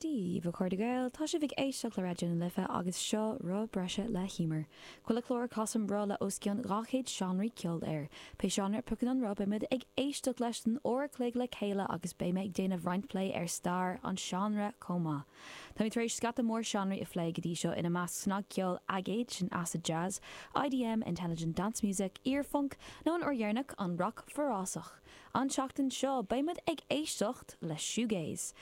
Dia daoibh a chairde Gael, Tá sibh ag éisteacht le Raidió na Life agus seo Roth Breise le hÍomar. Chuile chlár casaim roth le os cionn 200 seánraí ceoil air. Pé seánra a phriocann an roth beidh muid ag éisteacht leis don uair a chloig le chéile agus beidh mé ag déanamh roinnt plé ar stair an seánra chomh maith. Táimid tar éis scata mór seánraí a phlé go dtí seo ina measc snagcheol aigéid, sin acid jazz, IDM, intelligent dance music, iar-phunc nó an uair dheireanach an rac forásach. An tseachtain seo beidh muid ag éisteacht le Shoegaze.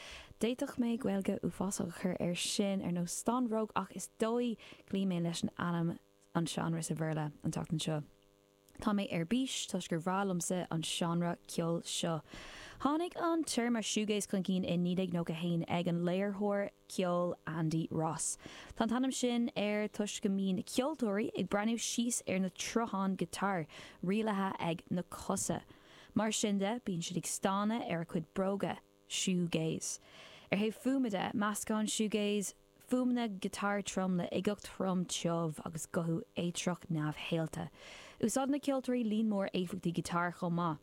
D'fhéadfadh mé Gaeilge uafásach a chur air sin, ar nós Stanbhróg, ach is dóigh cloífidh mé leis an ainm an seánra sa Bhéarla an tseachtain seo. Tá mé ar bís toisc gur breá liomsa an seánra ceoil seo. Tháinig an téarma Shoegaze chun cinn i 1991 ag an léiritheoir, ceol Andy Ross. Tá an t-ainm sin air toisc go mbíonn na ceoltóirí ag breathnú síos ar na troitheáin giotáir, rialaithe ag na cosa. Mar sin de, bíonn siad ag stánadh ar a gcuid bróga, shoegaze. Ar thaobh fuaime de, meascann shoegaze fuaimeanna giotáir trom le uigeacht throm tiubh agus guthú éitreach neamhshaolta. Úsáideann na ceoltóirí líon mór éifeachtaí giotáir chomh maith.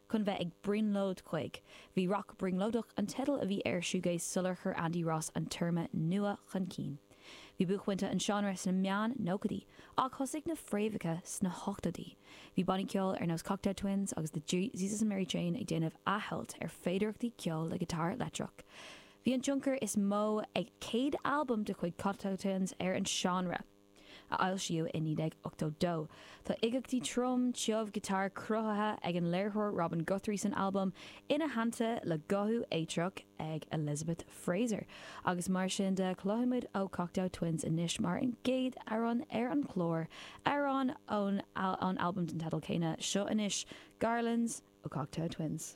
chun bheith ag brionglóid chuig. Bhí Rac Brionglóideach an teideal a bhí ar Shoegaze sular chuir Andy Ross an téarma nua chun cinn. Bhí buaicphointe an seánra sna meán nóchaidí, ach thosaigh na fréamhacha sna hochtóidí. Bhí bannaí ceoil ar nós Cocteau Twins agus The Jesus and Mary Chain ag déanamh athshamhailt ar féidearthachtaí ceoil le giotár leictreach. Bhí an tionchar is mó ag céad albam de chuid Cocteau Twins ar an seánra. a fhoilsíodh i 1982. Tá uigeachtaí trom, tiubh giotáir cruthaithe ag an léiritheoir Robin Guthrie san albam ina theannta le guthú éitreach ag Elizabeth Fraser, agus mar sin de cloisfidh muid ó Cocteau Twins anois mar an gcéad amhrán ar an chlár, amhrán ón albam den teideal céanna, seo anois Garlands ó Cocteau Twins.